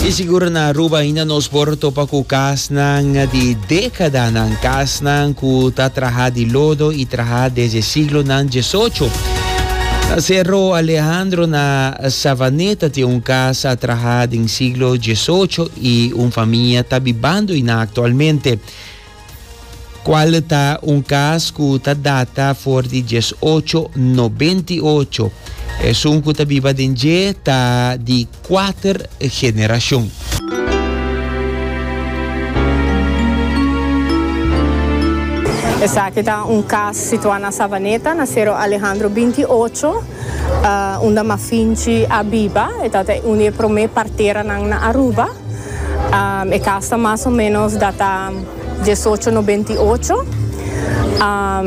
I sigur na Aruba ainda nos por topa ku kasnan di dekadanan, kasnan ku ta traha di lodo i traha desde siglonan diesocho. Na Serro Alejandro na Savaneta tin un kas a traha den siglo diesocho i un famia ta bibando einan aktualmente. Cual ta un cas cu ta data for di dies ocho noventa y ocho. Esun cu ta biba den dje ta di cuater generacion. Esaki ta un cas situa na Savaneta, na Cerro Alejandro binti i ocho, unda Mafinchi a biba. E tabata un di e prome parteranan na Aruba. E cas ta mas o menos data diesocho nobenta i ocho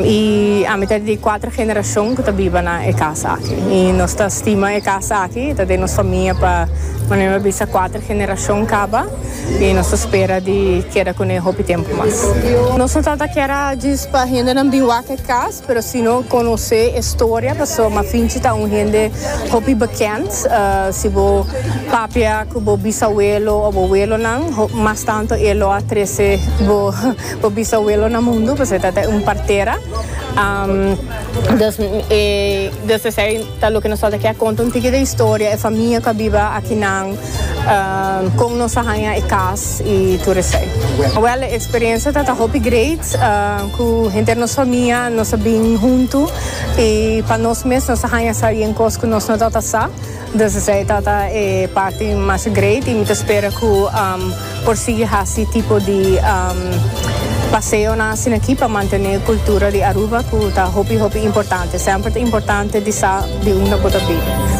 i ami ta di cuatro generacion cu ta biba na e cas aki i nos ta stima e cas aki ta den nos famia pa manera mi a bisa cuatro generacion caba i nos ta spera di keda cune hopi tempo mas. Nos no tabata kier a djis pa hendenan bin wak e cas Pero si no conoce e storia paso Mafinchi ta un hende hopi bekend. Si bo papia cu bo bisabuelo o bo abuelonan, mas tanto e lo a trece bo bisabuelo na mundu paso e ta ta un partera. Dus esey ta loke nos falta kia conta un tiki di e historia e famia cu a biba akinan. Con nos a haña e cas y tur esai? Well, e experiencia tata hopi great. Cu henter nos famia nos a bin hunto y pa nos mes nos a haña sa bien cos cu nos no tata sa. Dus esai tata e parti mas great y mi ta spera cu. Por sigui hasi tipo di paseonan asina aki pa mantené e kultura di Aruba ku ta hopi hopi importante. Semper ta importante di sa di unda bo ta biba.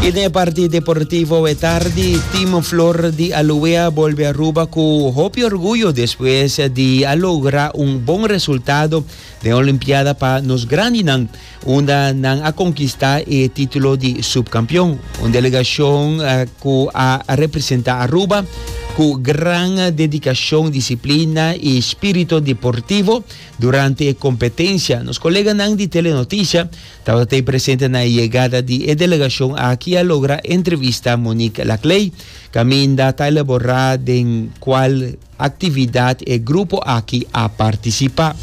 I den e parti deportivo e tardi, Team Flor di Aloe a bolbe Aruba ku hopi orguyo despues di a logra un bon resultado Den Olimpiada pa nos grandinan, unda nan a konkistá e título di subkampion. Un delegashon ku a representá Aruba ku gran dedikashon, disiplina i spirito deportivo durante e kompetensia. Nos koleganan di Telenoticia tabata t'ei presente na e yegada di e delegashon aki a logra entrevista Monique Laclay kaminda ta elaborá den kual actividad e grupo aki a participa.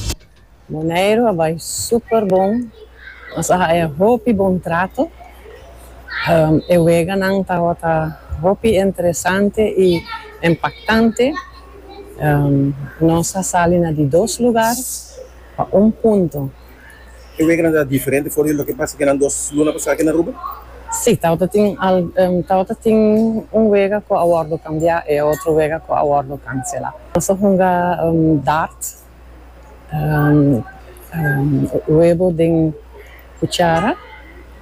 Monero a bai super bon, nos a haya hopi bon trato, e weganan tabata hopi interesante y impactante, nos a sali na di dos lugar pa un punto. E wega nan ta diferente for di loke pasa kinan dos luna pasá aki na Aruba? Sí, tabata tin algun, tabata tin un wega ku a wòrdu kambiá i e otro wega ku a wòrdu kanselá. Nos a hunga dart, webo den kuchara,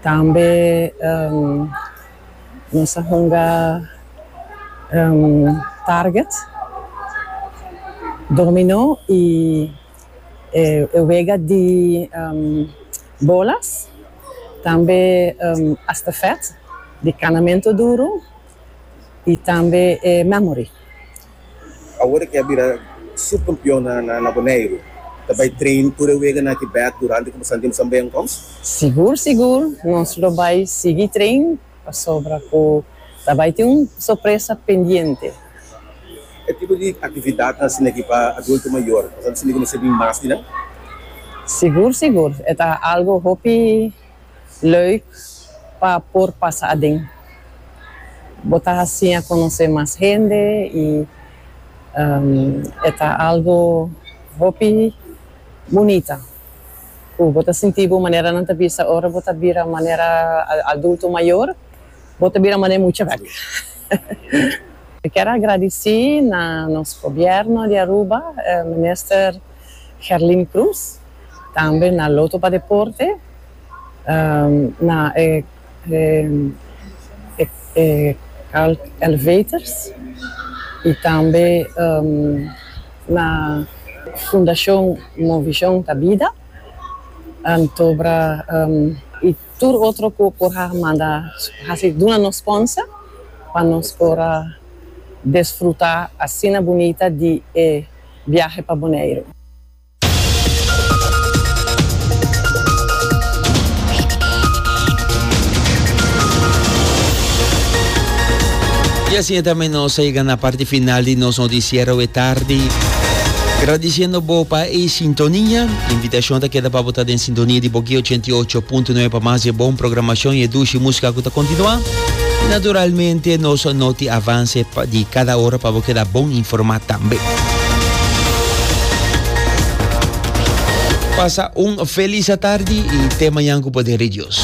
tambe nos a hunga target, dominó i. e wega di bolas, tambe estafet di kanamentu duru i tambe e memory. Awor aki a bira subkampionnan na Boneiru ta bai train tur e weganan aki bek durante ku pasandia bisan beenkomst? Sigur sigur nos lo bai sigui train pasobra ku ta bai tin un sorpresa pendiente. E tipo di actividad nan sina ki pa adulto mayor pasobra nan sina ki mester bin mas di nan? Sigur sigur, e ta algo hopi leuk pa por pasa aden. Bo ta haci a conoce mas hende y e ta algo hopi bunita cu bo ta sinti bo manera nan ta bisa ora bo ta bira manera adulto mayor, bo ta bira manera mucha vek. Mi kier a gradici na nos Gobierno di Aruba, Minister Gerlin Cruz, tambe na Loto pa Deporte, na e Carl Elevators y tambe na Fundacion Movision ta Bida, Antobra y Tur otro cu por a manda haci duna nos sponsor pa nos por a desfruta asina bunita di e biahe pa Boneiru. Y asina tambe nos a yega na parti final di nos noticiero e tardi. Gradiciendo bo pa e sintonia. Invitacion ta keda pa bo ta den. Sintonia di Boki ochenta i ocho punto nuebe pa mas di e bon programashon i e dushi músika ku ta kontinuá. I naturalmente nos noti avanse di kada ora pa bo keda bon informá tambe. Pasa un felis atardi i temañan ku poder di Dios.